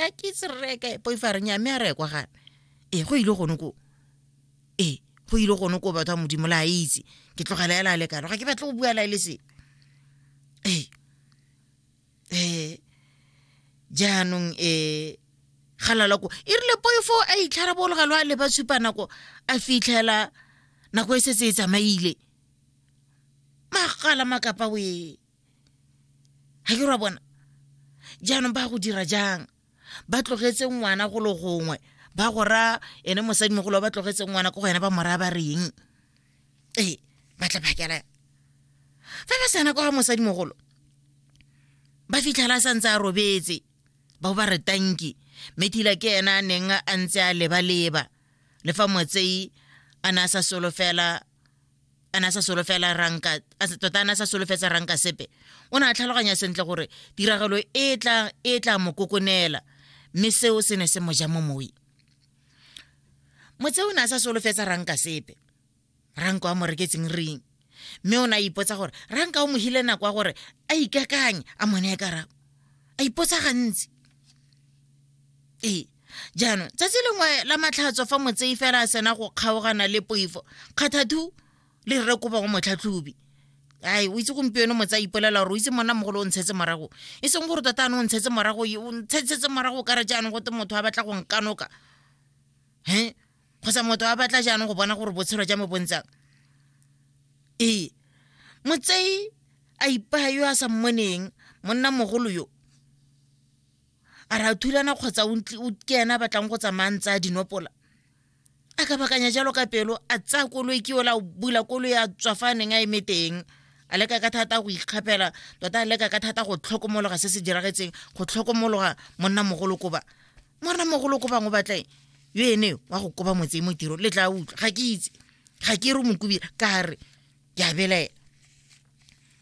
a ke itse re reye kae poifa a re nya mme a reye kwa gana ee go ile gone ko ee go ile gone ko batho ba modimo le a itse ke tlogela ela a le kalo ga ke batle go bua lae le se ee ee jaanong ee galala ko e rile poifo a itlharabologa lo a leba supa nako a fitlhela nako e setse e tsamaile magala makapa wee ga ke ra bona jaanong ba go dira jang ba tlogetse ngwana go le gongwe ba go ra ene mosadi mogolo ba tlogetse ngwana ko go ene ba mora ba reng ee ba tla phakela fa ba sena kwa mosadi mogolo ba fitlhela a santse a robetse ba bo ba re tanki mme thila ke ena a neng a ntse a lebaleba le fa motsei a ne a sa solofela a na sa solofela ranka tota a na sa solofetsa ranka sepe o ne a tlhaloganya sentle gore tiragalo e tla e tla mo kokonela mme seo se ne se mo ja mo moe motse o ne a sa solofetsa ranka sepe ranka wa mo reketseng ring mme o ne a ipotsa gore ranka o mogile nako ya gore a ikakanye a mone e karabo a ipotsa gantsi ee jaanong tsatsi lengwe la matlhatso fa motsei fela a sena go kgaogana le poifo kgathathu le rre kopa go motlhatlhobi ai o itse gompieno motse a ipolela gore o itse monna mogolo o ntshetse morago e seng gore tota ane o ntshetse morago o ntshetsetse morago ka re jaanong gote motho a batla go nkanoka he kgotsa motho a batla jaanong go bona gore botshelo ja me bontshang ee motsei a ipaya yo a sa mmoneng monna mogolo yo a re a thulana kgotsa ke ena a batlang go tsamaya ntse a dinopola a ka bakanya jalo ka pelo a tsaya koloi ke ola bula koloi a tswa fa a neng a eme teng a leka ka thata go ikgapela tota a leka ka thata go tlhokomologa se se diragetseng go tlhokomologa monna mogolo koba monna mogolo koba ngo batleng yo ene wa go koba motse mo tiro le tla utlwa ga ke itse ga ke re mokubile ka re ke a belaela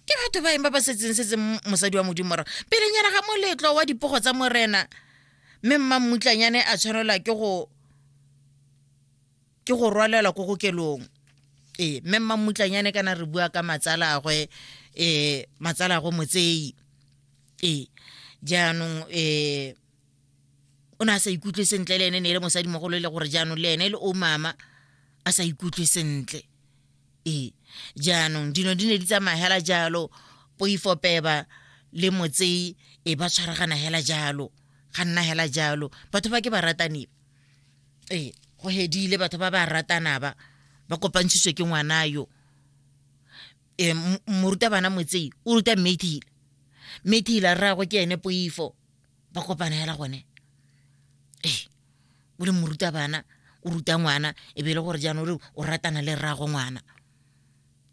ke batho ba eng ba ba setseng setse mosadi wa modimo ra pelenyana ga moletlo wa dipogo tsa morena mme mmammutlanyane a tshwanelwa ke go ke go rwalelwa ko kokelong ee mme mmammutlanyane kana re bua ka matsalagwe um matsalagwe motseyi ee jaanong um o ne a sa ikutlwe sentle le ene ne e le mosadi mogolo e le gore jaanong le ene le o mama a sa ikutlwe sentle ee jaanong dino di ne di tsamaya hela jalo poifopeba le motsei e ba tshwaragana hela jalo ga nna hela jalo batho ba ke ba ratane ee go hedile batho ba ba ratana ba ba kopantshiswe ke ngwana yo um morutabana motsei o ruta mathile mathile a rrago ke ene poifo ba kopana hela gone ee o le moruta bana o ruta ngwana e be e le gore jaanong re o ratana le rrago ngwana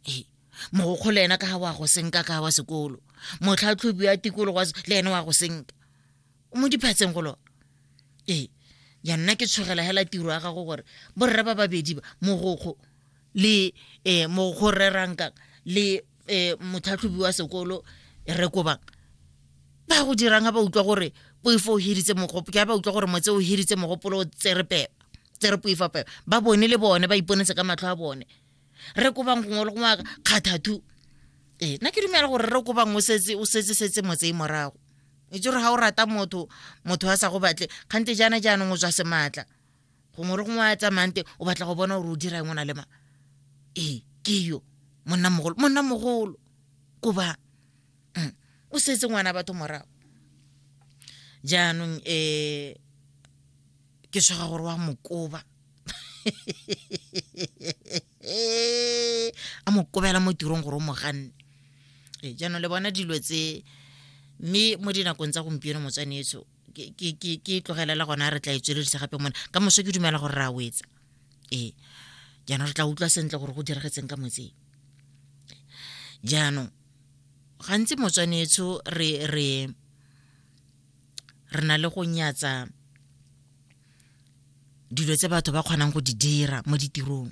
ee mogokgo le ena ka ga wa go senka ka wa sekolo motlhatlhobi ya tikologo le ene wa go senka o mo diphatseng golo ee ja nna ke tshogela hela tiro ya gago gore borre ba babedi ba mogokgo le um mogokgo rreranka le um motlhatlhobi wa sekolo re kobang ba go dirang ga ba utlwa gore poifo o hiritse mogopolo ke ba utlwa gore motse o hiritse mogopolo o tsere pepa tsere poifa pepa ba bone le bone ba iponetse ka matlho a bone re kobang gongwe le gongwe kgathathu ee nna ke dumela gore re kobang o setse o setse setse motse e morago itse gore ga o rata motho motho a sa go batle kgante jaana jaanong o tswa sematla gongwe re gongwe a tsamayang teng o batla go bona gore o dira eng o na le ma ee ke yo monna mogolo monna mogolo ko ba mm, o setse ngwana batho morago jaanong um ke tshwega gore wa mokoba a mo kobela mo tirong gore o mo ganne ee jaanong le bona dilo tse mme mo dinakong tsa gompieno motswanetso ke e tlogelela gona re tla e tsweledisa gape mone ka moso ke dumela gore re a wetsa ee jaanong re tla utlwa sentle gore go diragetseng ka motseng jaanong gantsi motswanetsho re re re na le go nyatsa dilo tse batho ba kgonang go di dira mo ditirong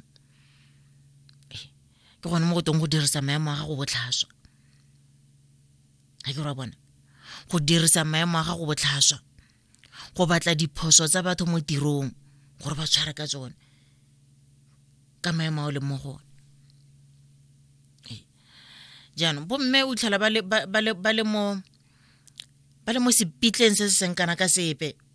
ke gone mo go teng go dirisa maemo a gago botlhaswa ga ke ra bona go dirisa maemo a gago botlhaswa go batla diphoso tsa batho mo tirong gore ba tshware ka tsone ka maemo a o leng mo gone jaanong bomme o tlhola ba le mo sepitleng se se seng kana ka sepe